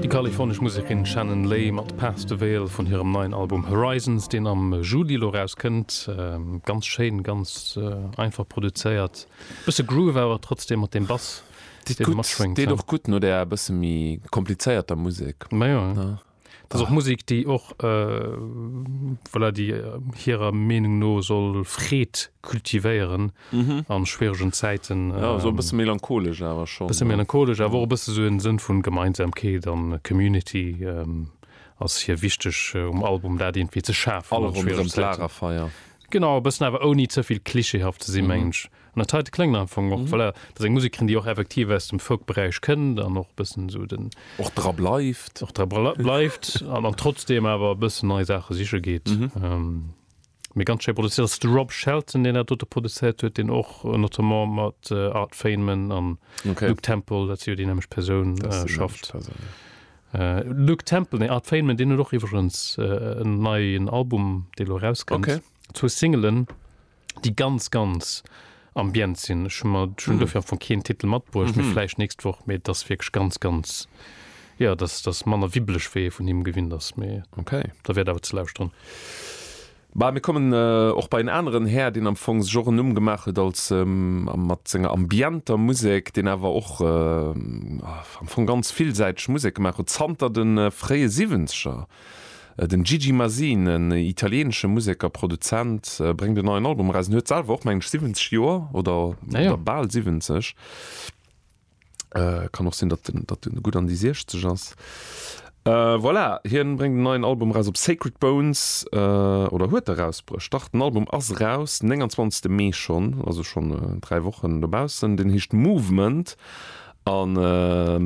Déi kalifornesch Musekerin Shannon Lay mat Path the Veil vun hirem neien Album Horizons, deen am Juli elo erauskënnt. Ganz schéin, ganz einfach produzéiert. Bësse Groove awer trotzdeem mat deem Bass, deen do matschwéngt. Deet och gutt no där e bësse méi komplizéierter Musek. Majo. Das och Musik déi och voilà, déi äh, hirer Meenung no soll Freed kultivéieren mhm. an schwieregen Zäiten. Äh, ja, so ähm, bësse melancholesch awer schon. Bësse melancholesch, awer och bësse so en Sënn vun Gemeinsamkeet an Community. Ähm, ass hier wichteg äh, um Album dat irgendwie ze schafen. Alle run Lagerfeier. Genau, bëssen awer ouni zëvill klischeehaft ze si mhm. mensch. An der Tide kléngt am Fong och, voilà, dat ass eng Musekerin, déi och effektiv aus dem Folk-Beräich kënnt an och e bëssen esou den. Och dra bleift. Och dra bleift an trotzdeem awer e bëssen nei Saache siche geet. Mee ganz schéi produzéiert. Dat ass de Rob Shelton, deen dat dote produzéiert huet, deen och notamment mat Art Feynman an Luke Temple, dat si jo déi nämmeg Persoun, schafft. Luke Temple, nee, Art Feynman, deen huet och iwwregens en neien Album, dee elo erauskënnt, zwou Singelen. déi ganz ganz Ambient sinn. Ech hu mer schon dofir am Fong keen Titel matbruecht, mee vläicht nächst Woch. Mee et ass wierklech ganz ganz, jo, et ass, et ass manner wibbeleg wéi ee vun him gewinnt ass. Mee Okay. der wäert awer ze lauschteren. Bah, mir kommen och bei en aneren Här, deen am Fong sech och en Numm gemaach huet als, mat senger ambienter Musek, deen awer och am Fong ganz villsäiteg Musek gemaach huet zanter de fréie Siwwenzeger. Den Gigi Masin, en italieenesche Musek a Produzent, bréngt en neien Album eraus. En huet selwer och, mengen ech, 70 Joer oder bal 70. Kann och sinn, datt en gutt an déi 60 ass. Voilà, hien bréngt en neien Album eraus op Sacred Bones, oder huet erausbruecht, dach, den Album ass eraus, den 29. Mee schonn, also schonn dräi Wochen dobaussen. Deen heescht Movement An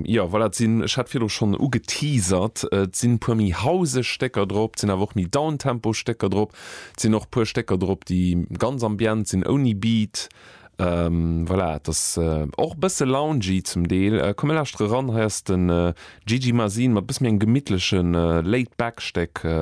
jo, voilà, et sinn, ech hat virdru schonn ugeteasert, et sinn e puer méi houseg Stécker drop, et sinn awer och méi downtempo Stécker drop, et sinn och e puer Stécker drop, déi ganz ambient sinn, ouni Beat. Voilà, et ass och e bësse loungy zum Deel. Komm, mir lauschtere ran, hei ass de Gigi Masin mat e bësse méi engem gemittleche Laid-Back Stéck.